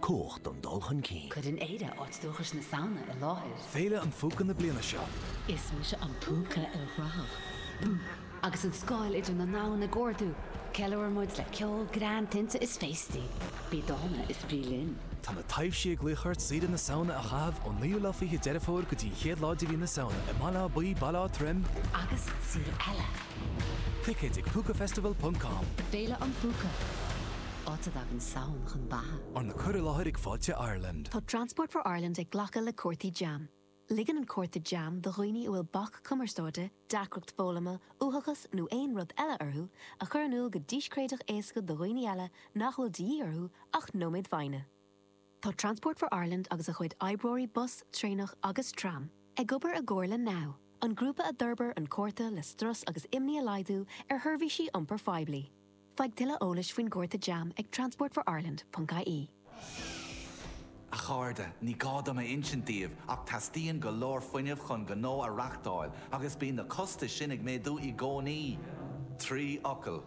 Cumhacht an dul chun cinn. Cuireann Éire áit dúchais na Samhna i láthair. Féile an Phúca na bliana seo. Is mise an púca ilchruthach. Agus an scáil idir na ndomhan ag ardú, ceiliúrann muid le ceol, greann, tinte is féastaí. Bí dána is bí linn. Tá na taibhsí ag glaoch ort deireadh na Samhna a chaitheamh ón naoú lá fichead Deireadh Fómhair go dtí an chéad lá de mhí na Samhna i mBaile Átha Buí, Baile Átha Troim, agus araile! Ticéid ag Púcafestival.com. Féile an Phúca. Áit a dtagann an tSamhain chun beatha. Arna cur i láthair ag Fáilte Ireland. Tá Transport for Ireland ag glacadh le cártaí jam. Ligeann an cárta jam do dhaoine a bhfuil bac cumarsáide, deacracht foghlama, uathachas nó aon rud eile orthu a chur in iúl go díscréideach éasca do dhaoine eile nach bhfuil de dhíth orthu ach nóiméad foighne. Tá Transport for Ireland agus a chuid oibreoirí bus, traenach agus tram ag obair i gcomhar le now, an grúpa a d'fhorbair an cárta le strus agus imní a laghdú ar sheirbhísí iompair phoiblí. Faigh tuilleadh eolais faoin gcárta jam ag transportforireland.ie. A chairde, ní gá dom a insint daoibh ach teastaíonn go leor fuinnimh chun gnó a reachtáil agus bíonn na costais sin ag méadú i gcónaí! Trí fhocal.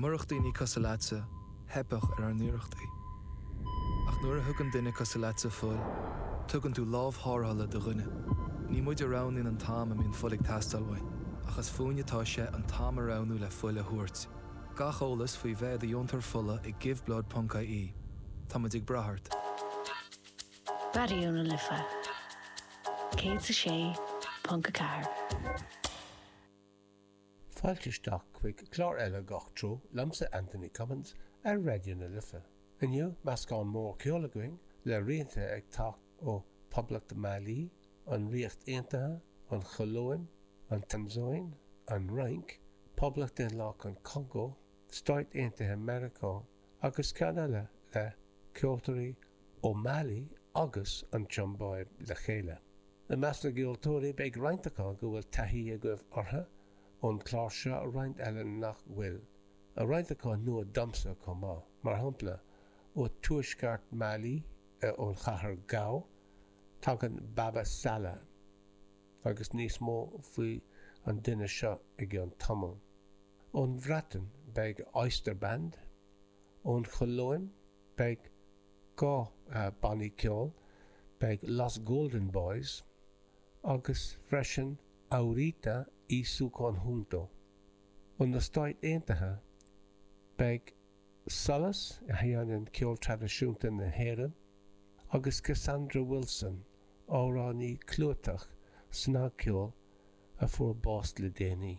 Murach daoine cosúil leatsa, theipfeadh ar ár n-iarrachtaí. Ach nuair a thugann duine cosúil leatsa fuil, tugann tú lámh tharrthála do dhuine. Ní muid a roghnaíonn an t-am a mbíonn fuil ag teastáil uainn, ach is fúinn atá sé an t-am a roghnú le fuil a thabhairt. Gach eolas faoi bheith i do dheontóir fola ag Giveblood ponc ie Tá muid ag brath ort. Raidió na Life 106.4. Fáilte isteach chuig clár eile Gach Treo liomsa Anthony Cummins ar Raidió na Life. Inniu, meascán mór ceoil againn, le rianta ag teacht ó Poblacht Mhailí, an Ríocht Aontaithe, an Cholóim, an Tansáin, an Fhrainc, Poblacht Dhaonlathach an Chongó, Stáit Aontaithe Mheiriceá, agus ceann eile le ceoltóirí ó Mali agus an tSiombáib le chéile. I measc na gceoltóirí beidh roinnt acu go bhfuil taithí agaibh orthu ón clár seo, roinnt eile nach bhfuil, a roinnt acu nua domsa chomh maith, mar shampla, ó tuaisceart Mali, ón chathair Gao, tagann Baba Sala, agus níos mó faoi an duine seo i gceann tamaill. Ón Bhreatain beidh Oyster Band, ón Cholóim, Beidh dhá bannaí ceoil, beidh Los Golden Boys agus freisin Aurita y su conjunto. Ó na Stáit Aontaithe, beidh Solas, a sheineann ceol traidisiúnta na hÉireann, agus Cassandra Wilson, amhránaí clúiteach snagcheoil a fuair bás le déanaí.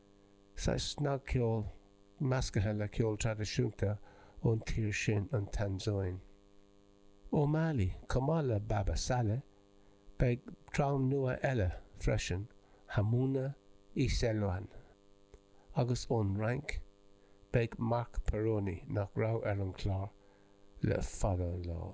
saghas snagcheoil meascaithe le ceol traidisiúnta ón tír sin, an Tansáin. Ó Mali, chomh maith le Baba Salah, beidh dream nua eile freisin, Hamouna Isewlan, agus ón Fhrainc, beidh Marc Perrone, nach raibh ar an chlár le fada an lá.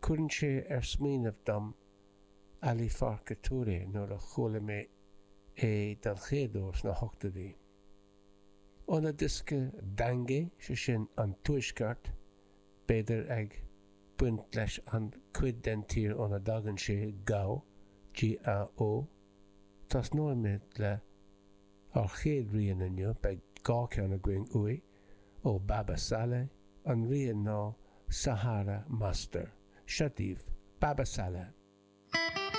Cuireann sé ag smaoineamh mé Ali Farka Touré nuair a chuala mé é den chéad uair sna hochtóidí. Óna dhiosca Dangay, sé sin an Tuaisceart, b'fhéidir, ag baint leis an cuid den tír óna dtagann sé, Gao, G-A-O. Tosnóimid lenár chéad rian inniu, beidh dhá cheann againn uaidh. ó Baba Salah, an rian ná Sahara Master. Seo daoibh Baba Salah.